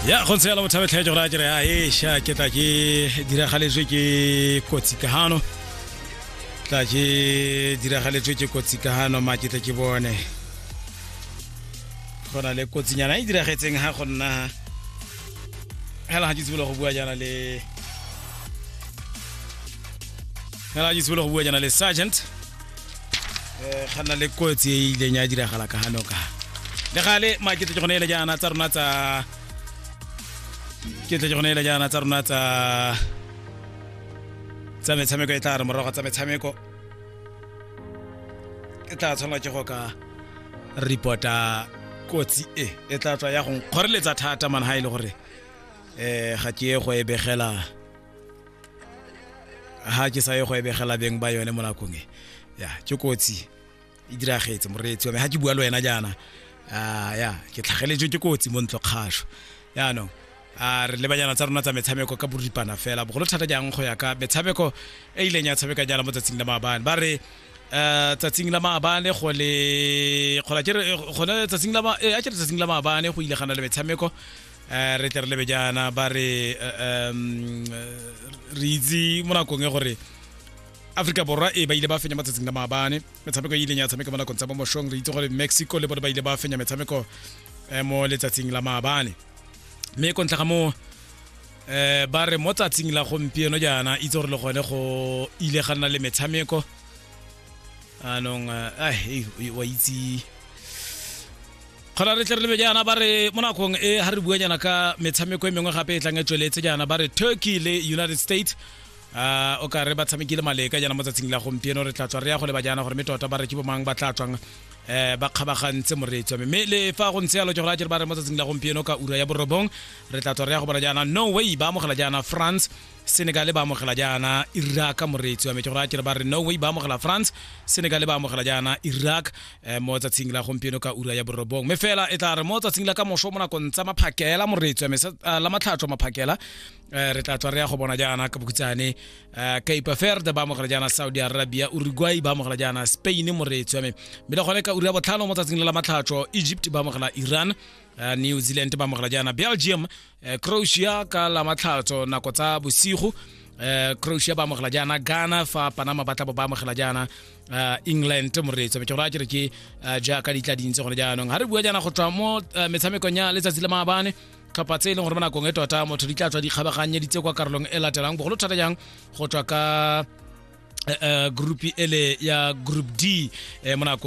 ya go ntse yalo botshabetlhae jo gore a kere a esha ke tla ke diragaletswe ke kotsi ka gano tla ke diragaletswe ke kotsi ka gano ma ke tle ke bone go na le kotsinyana e diragetseng ga go nna hela ga ke tsibolo go bua jana le hela ga ke tsibolo go bua jana le sergeant eh, ga na le kotsi e e ileng ya diragala ka gano ka le gale makete ke gone ele jaana tsa rona tsa ke tle ke gone ele jaana tsa rona tsa tsa metshameko e tla re morago tsa metshameko e tla tshwanela ke go ka reporta kotsi e e tla tswa ya go nkgoreletsa thata man ha e le gore um ga ke ye go e begela ha ke sa ye go ebegela beng ba yone mo nakong e ya ke kotsi e diragetse moreetsi wa me ha ke bua le wena jaana a ya ke tlhageletswe ke kotsi mo ntlo kgašo yaanong a re lebanyana tsa rona tsa metshameko ka boripana fela bogolo thata jang go ya ka metshameko e ileng ya tshameka jaana mo tsatsing la maabane ba re um tsatsing la maabane go le gona tsatsing la maabane go ile gana le metshameko um re tle re lebe jaana ba re um re itse mo nakong e gore aforika borwa e ba ile ba fenya matsatsing la maabane metshameko e ileng ya tshameka mo nakong tsa bomošong re itse gore mexico le bone ba ile ba fenya metshameko eh, mo letsatsing la maabane mme ko ntlha ga moo eh ba re mo tsatsing la gompieno jaana itse gore le gone go ile ga nna le metshameko anong wa itse kgona re tle re lebe jaana ba re mo nakong e ga re bua jaana ka metshameko e mengwe gape e tlang e tsweletse jaana ba re turkey le united states uh, o ka re ba tshamekile maleka jaana mo tsatsing la gompieno re tla tswa re ya go leba jaana gore mme tota ba re ke bomang ba tla tswang um ba kgabagantse moreetswa mme le fa go ntse yalo ke gore a jere ba re mo tsatsing la gompieno ka ura ya borobong re tla tswa re ya go bona jaana no way ba amogela jaana france senegale ba amogela jaana iraq moreetsi wa metse gore a kere ba re norway ba amogela france senegale ba amogela jaana iraq um mo tsatsing la gompieno ka ura ya borobong mme fela e tla re mo tsatsing la ka moso mo nakong tsa maphakela moreetsi wa mesa eh, la matlhatso maphakela um re tla tswa re ya go bona jaana ka bokutsane um cape verde ba amogela jaana saudi arabia uruguay ba amogela jaana spain moreetsi wa me mme le gone ka ura ya botlhano mo tsatsing la la matlhatso egypt ba amogela iran Eh, new zealand ba amogela jaana belgium eh, croatia ka la matlhatso nako tsa bosigo eh, croatia ba amogela jaana ghana fa panama ba tla bo ba amogela jaana eh, england moreetso ke gore a kere ke eh, jaaka di tla dintse gone jaanong ga re bua jaana go tswa mo eh, metshamekong ya letsatsi la maabane tlhopha tse e leng gore mo nakong e tota motho di tla tswa di kgabaganye ditse kwa karolong e latelang bogolo thata jang go tswa ka eh, eh, group ele ya group d eh, mo nakong